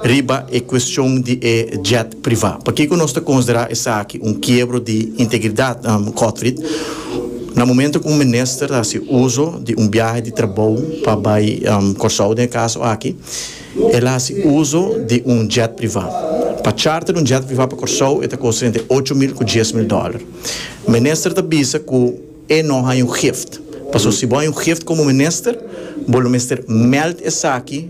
Riba e cuestion di e jet priva, pakico nos ta considera esaki un kiebro di integridad, Cotfrid, na momento cu un minister ta haci uzo di un biahe di trabou pa bay Corsou, den e caso aki, el a haci uzo di un jet priva. Pa charter un jet priva pa Corsou e ta costa entre ocho mil cu dies mil dollar. Minister ta bisa cu. E no haña un gift. Pasobra si bo haña un gift komo minister, bo lo mester mèld esaki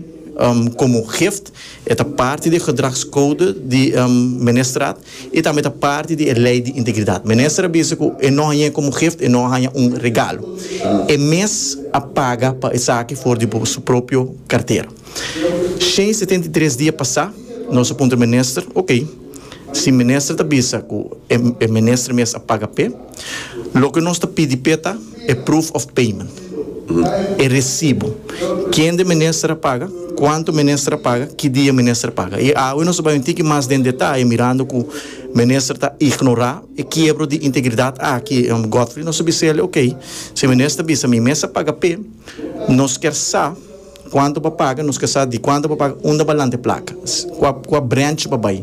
komo un gift. E ta parti di e gedragskoude di ministerat i tambe ta parti di e lei di integridat. Minister a bisa ku e no hañ'é komo un gift, e no haña un regalo. E mes a paga pa esaki for di bo su propio kartera. Shen setenta i tres dia pasá, nos a puntra minister, Oke. Si minister ta bisa cu e minister mes a paga p'e, loke nos ta pidi p'e ta e proof of payment, e recibo, kende minister a paga, cuanto minister a paga, ki dia minister a paga. Y awe nos ta bay un tiki mas den detaye mirando cu minister ta ignora e kiebro di integridad aki. Godfrey nos a bis'el, ok, si e minister ta bisa mi mes a paga p'e, nos kier sa, Cuanto pa paga, nos ke sa di cuanto pa paga unda ba lante placa, cua cua branch ba bay,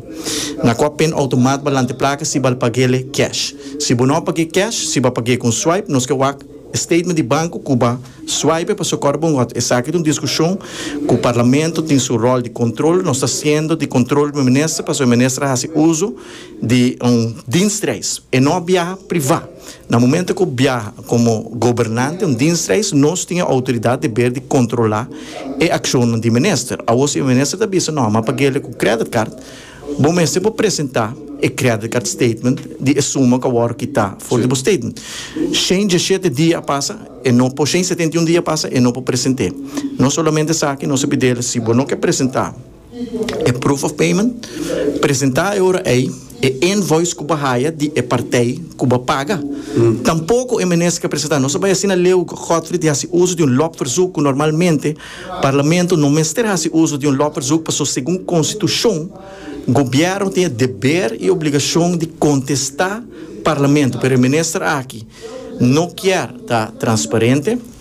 na cua pen automat ba lante placa si bal pagele cash. Si bo no page cash, si ba page con swipe, nos ke wak e statement di banco cu ba swipe paso cor bo ngot esaki ta un discusion cu parlamento tin su rol di control, nos ta siendo di control bo minister paso e minister a haci uzo di un dienstreis, e no a biaha priva. Na momento cu biaha como gobernante un dienstreis nos tin e autoridad deber di controla e accionnan di minister. Awo si e minister ta bisa no, ma paguele cu credit card, bo mester por presenta e credit card statement di e suma cu a worde kita for di bo statement. Shen dieschete dia a pasa e no por, shen setenta y un dia a pasa e no por presente. Nos solamente sa aki, nos a pidele si bo no ke presenta, E proof of payment presentá e ora ei e invoice ku bo haya di e partij ku bo paga. Tampoko e Minister ka presentá. Nos a bai asina Leo Godfrey di hasi uso di un lopverzoek ku normalmente Parlamento no mester hasi uso di un lopverzoek pasobra segun Konstitushon Gobièrnu tin e deber i obligashon di kontestá Parlamento pero e Minister aki no kier ta transparente.